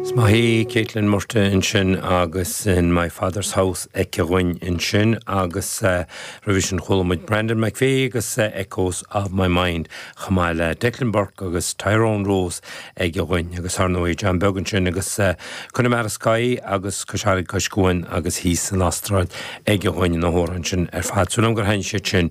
Is maith í Caitlin Murtagh ansin agus in My Father's House aici dhúinn ansin agus roimhe sin chuala muid Brandon McPhee agus Echoes of My Mind chomh maith le Declan Burke agus Tyrone Rose aige dhúinn agus thar ndóigh John Beag ansin agus Connemara Sky agus Cois Fharraige Cois Cuain agus thíos san Astráil aige dhúinn na hamhráin sin ar fad. Súil agam gur thaitin siad sin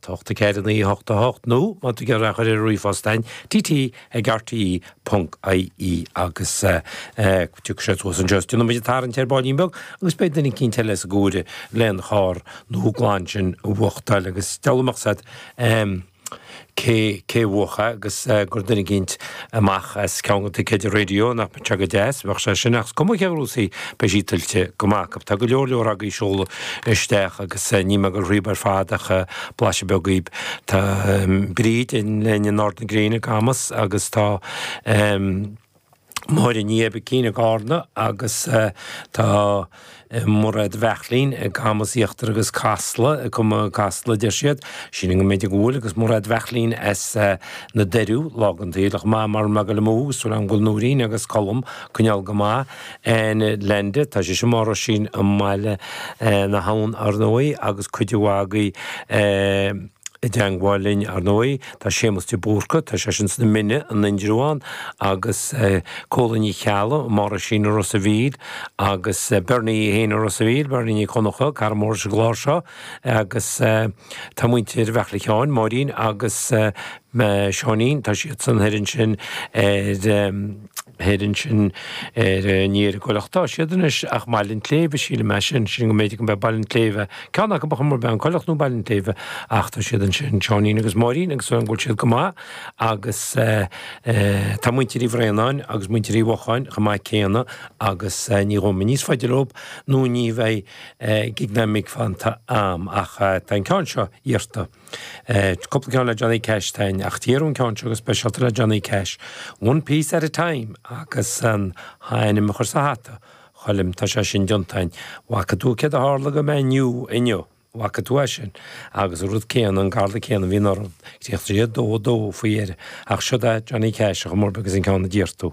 T ocht a ceithre naoi a hocht a hocht nó má tá tú ag goil dhá chur ar ríomhphost a'inn tt ag rte ponc ie agus tiocfaidh sé suas anseo is déanfaimid an tarraingt ar ballín beag agus beidh duine eicínt eile sa gcomhaireamh lena charr nua glan sin a bhuachtáil agus deabhal a mbeadh a fhios a'd cé cé a bhuachadh agus gur duine eicínt amach as ceann de na ticéid raidió, nach mbeadh sé go deas, bheadh sé sin, ach is cuma cé a ghnóthós í, beidh sí tuillte go maith acu. Tá go leor leor agaibh ag seoladh isteach agus níl mé ag dul thríbh ar fad ach blaiseadh beag dhaoibh. Tá Bríd linn in Ard na Gréine i gCamus agus tá Máire Ní Oibicín i gCarna agus tá. Mairéad Bheairtlín i gCamus Íochtar agus Casla i gCumu Casla, deir siad. Sílim go mb'fhéidir go bhfuil, agus Mairéad Bheairtlín as na Doiriú, lá gan taoille chomh maith mar Mac Giolla Mumha, agus súil agam go bhfuil Nóirín agus Colm ag coinneáil go maith in Leainde. Tá sise mar sin i mBaile na hAbhann, ar ndóigh, agus cuid mhaith agaibh i dteangmháil linn, ar ndóigh. Tá Séamus de Búrca, tá sé sin sna Mine, in Indreabhán, agus Colleen Ní Cheallaigh, mar sin i Ros a' Mhíl, agus Bernie Uí hÉanaigh Ros a' Mhíl, Bernie Ní Chonnacha, cara mór sa gclár seo, agus tá muintir Bheairtle Sheáin, Máirín agus Seáinín, tá siadsan thoir ansin ar. thoir ansin ar, ní ar an gCoilleach atá siad anois ach i mBaile an tSléibhe, sílim é sin, sílim go mb'fhéidir gurb é Baile an tSléibhe, ceann acu ar chuma ar bith an Coilleach nó Baile an tSléibhe ach tá siad ansin, Seáinín agus Máirín agus súil a'inn go bhfuil siad go maith agus tá muintir Uí Bhraonáin agus muintir Uí Bhuacháin chomh maith céanna agus ní ghabhfaidh mé níos faide leo nó ní bheidh cúig nóiméad fanta a'm ach tá an ceann seo iarrta. cúpla ceann le Johnny Cash a'inn, ach d'iarr tú an ceann seo go speisialta le Johnny Cash, One Piece at a Time, agus an t-ainm a chur sa hata, Choilm, tá sé sin déanta a'inn. 'Bhfaca tú céard a tharla go Man U inniu? 'Bhfaca tú é sin? Agus an rud céanna, an galra céanna a bhíonn orm, críochnaigh sé 2 2 faoi dheireadh, ach seo'd é Johnny Cash ar chuma ar bith agus an ceann a d'iarr tú.